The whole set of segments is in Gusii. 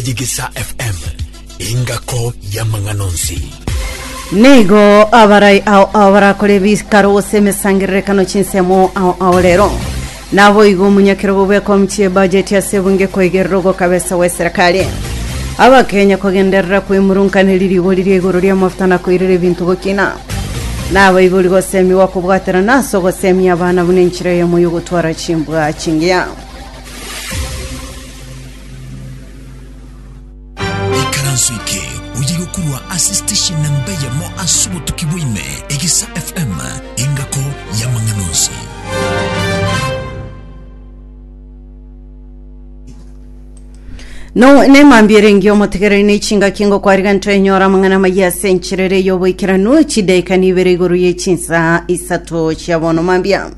Enyegesa FM, engako y'amang'ana onsi. Nigo abarai ao ao barakora ebikaro gose emesangererekano chinsemo ao ao rero naboigo omunyakero gobweka omuchie bajeti ase ebunge koigerera ogokabesa gwe serikali abakenya kogenderera kwemurunkaneri rigo riria igoro ria mafuta na koirera ebinto gokina nabaibori gosemigwa kobwaterana ase ogosemia abana buna enchera eyemo yogotwara chimbwa chingiya ikaranso eke oye gokurwa ase station namba eyemo ase obotuki bwaime egesa fm engako y'amang'ana onsi No, nemambia erengi omotegereri ne chingaki ngokwariga ntwenyora amang'ana amaya ase encherere y'oboikeranu chidaika nibere igoro ye chinsa isato chia bono mambia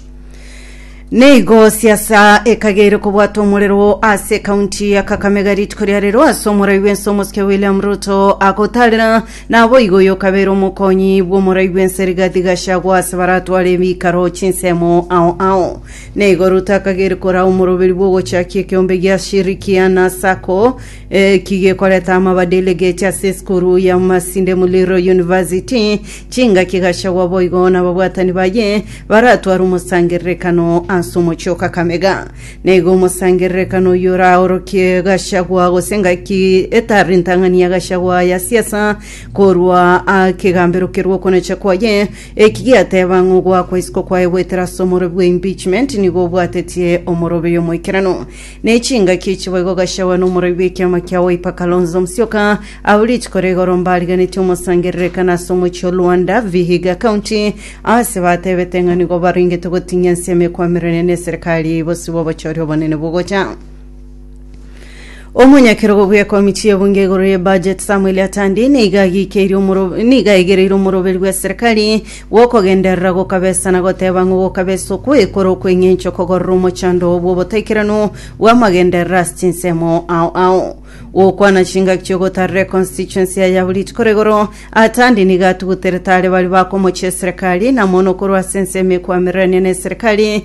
Neigo siasa ekageire kobwatwa omorero ase ekaunti ya Kakamega rituko ria rero ase omorai bw'ense Omosike William Ruto agotaarera naboigo oyo okabeire omokonyi bw'omorai bw'ense Rigathi Gachagua ase baratware ebiikaro chinsemo ao ao. Neigo Ruto akageire koraa omoroberi bw'ogochakia ekeombe gia Shirikiana Sacco Eki gekoreta amabadili geche ase esukuru ya Masinde Muliro University, chingaki gachagwa boigo nababwatani baye baratware omosangererekano ase omochie o Kakamega. Naigo omosangererekano oyio oraorokie Gachagua gose engaki etari ntang'ani ya Gachagua ya siasa korwa a kegambero kerwa okonacha kwaye. Eki giateba ng'a ogoakwa isiko kwaye goetera ase omorobe bwa impeachment nigo obwatetie omorobeyo omoikeranu. Ne chingaki echi boigo Gachagua na omoroi bw'ekiama kia Wiper Kalonzo Musyoka aba rituko ria igoro mbariganeti omosangererekano ase omochie o Luanda, Vihiga County, ase batebete ng'a nigo barengete gotinyia ense emekwamererania n'eserekari eye bosibwa obochori obonene bogocha. Omonyakerogo bw'ekomiti y'ebunge igoro ye budget Samuel Atandi nigo agiikeirie omoro- nigo aegereire omoroberi bw'eserekari Gokogenderera gokabesa na goteba ng'o gokabesa okwo ekore okweng'encha okogorora omochando oo bw'obotaikeranu bw'amagenderero ase chinsemo ao ao. Gokwana chingaki chi'ogotarera econstituency ya Yabulit kore igoro, Atandi nigo atuguterete are baria bakomochia eserekari, na mono korwa ase ensemo ekwamererania n'eserekari,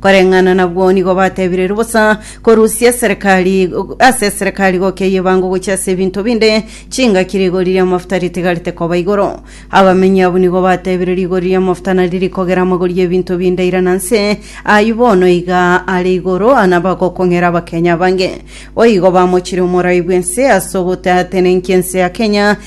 Koreng'ana nabwo nigo batebireirwe bosa korusia eserekari ase eserekari gokia y'ebango gochia ase ebinto binde, chingaki rigori ri'amafuta ritigarete koba igoro. Abamenyi abwo nigo batebire rigori ri'amafuta nari rikogera amagori y'ebinto binde ira na nse, ayio bono iga are igoro nabagokong'era Abakenya abange. Boigo bamochire omorai bw'ense ase ogoteatenenkia ense ya Kenya,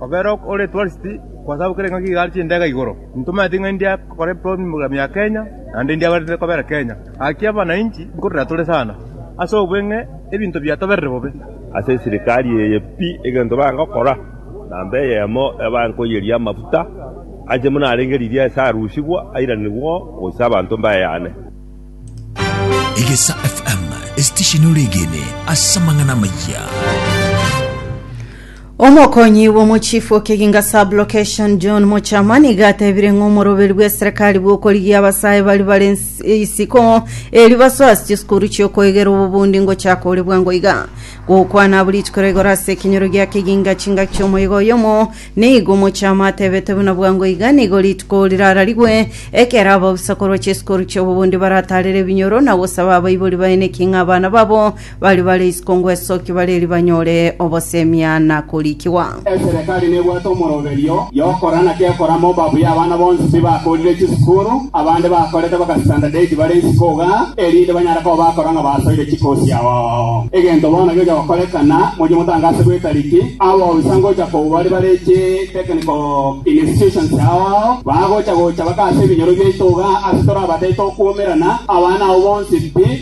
Obere ore tourist kwasabokire ng'a nigo are chindege igoro, intomanyete ng'a india kore program ya Kenya naende india gwenerete kobera Kenya. Gaki abanainchi nkorera tore sana ase obweng'e ebinto biatoberire bobe. Ase esirikari eye pi egento bagokora namba eyemo ebankoyeria amafuta anche buna arenge riria ase arusigwa airanigwe oo ase abanto mbayane. Egesa FM, esitesheni ore egene ase amang'ana amayia. Omokonyi bw'omochifu okeginga sublocation John Mochama niga atebire ng'a omoroberi bw'eserekari bw'okorigia abasae bari bare isiko eri basoe ase chisukuru chi'okoegera obobundi ngochaka ore bwango iga. Gokwana abwo rituko ria igoro ase ekenyoro gia keginga chingaki chi'omoyega oyomo, nigo Mochama atebete buna bwango iga nigo rituko rirararigwe ekero ababusa korwa chisukuru chi'obobundi barataarere ebinyoro na gosaba abaibori baeneki ng'a abana babo Baria bare isiko ngwesokia bare erio banyore obosemia na korikigwa. Eserekari nebwate omoroberio y'okora naki ekora moba buya abana bonsi tibakorire chisukuru, abande bakorete bakasitandadeti bare isiko iga, erinde banyare koba bakora ng'a basoire chikosi ao ao. Egento bono gegocha gokorekana, mochie motange ase bwekariki, abaofisa ngocha kobu baria bare chi technical institutions ao ao, bagocha gocha bakaase ebinyoro biaito iga ase torabatete okuomerana, abana ao bonsi pi,